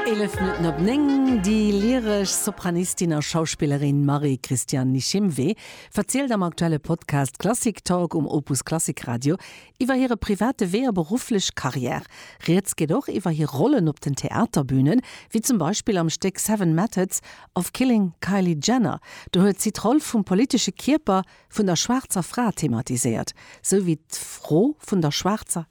Eelef Minutten op néng. Déi lyresch Sopranistin a Schauspillerin Marie-Christiane Nishimwe verzielt am aktuelle Podcast Klassik Talk um Opus Klassik Radio iwwer hire private Wee a berufflech Karriär. Rieds geet och iwwer hir Rollen op den Theaterbünen, wéi zum Beispill am Stéck Seven Methods of Killing Kylie Jenner. Do huet si d'Roll vum politesche Kierper vun der schwaarzer Fra thematiséiert, sou wéi d'Fro vun der schwaarzer.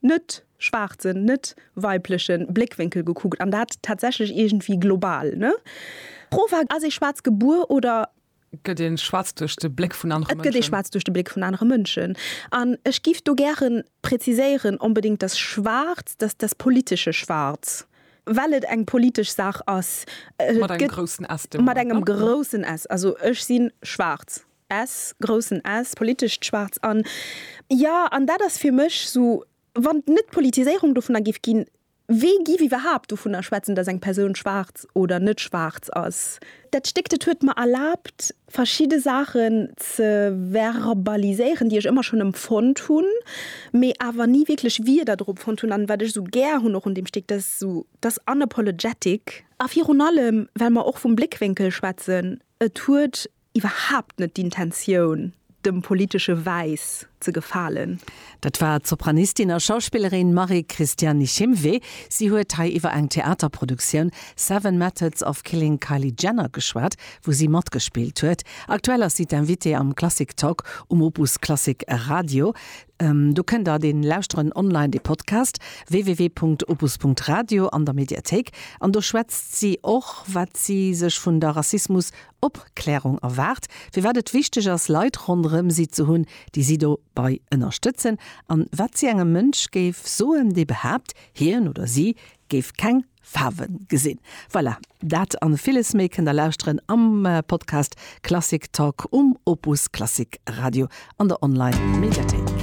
net schwaarzen, net weiblechen Bléckwénkel gekuckt, an dat tatsächlech iergendwéi global, ne? D'Fro war, Ass ee Schwaarz gebuer oder. Gëtt ee Schwaarz duerch de Bléck vun anere Mënschen? Et gëtt ee Schwaarz duerch de Bléck vun anere Mënschen. An ech giff do gären präziséieren, onbedéngt das Schwarz, das, das politische Schwarz, well et eng politesch Saach ass. Mat engem groussen S. Mat engem groussen S. Also ech si schwaarz. S, groussen S, politescht Schwaarz an, jo, an dat ass fir mech esou, wann et net d'Politiséierung dovunner géif ginn, wee giff iwwerhaapt dovunner schwätzen, datt eng Persoun schwaarz oder net schwaarz ass? Dat Stéck, dat huet mer erlaabt, verschidde Saachen ze verbaliséieren, déi ech ëmmer schonn empfonnt hunn, mee awer ni wierklech Wierder drop fonnt hunn. An wat ech esou gär hunn och un deem Stéck, dat ass esou dass unapologetic. A virun allem, well mer och vum Bléckwénkel schwätzen, et huet iwwerhaapt net d'Intentioun, dem politesche Wäiss ze gefalen. Dat war d'Sopranistin a Schauspillerin Marie-Christiane Nichimwe. Si huet hei iwwer eng Theaterproduktioun Seven Methods of Killing Kylie Jenner geschwat, wou si matgespillt huet. Aktuell ass si d'Invitée am Klassik Talk um Opus Klassik Radio. Do kënnt der dee lauschteren, online, de Podcast www.opus.radio an der Mediathéik. An do schwätzt si och, wat si sech vun der Rassismus Opklärung erwaart, firwat et wichteg ass, Leit ronderëm si ze hunn, déi si dobei ënnerstëtzen, an wat si engem Mënsch géif soen, dee behaapt, hien oder si géif keng Faarwe gesinn. Voilà, dat an villes méi kënnt der lauschteren am Podcast Klassik Talk um Opus Klassik Radio an der Online Mediathéik.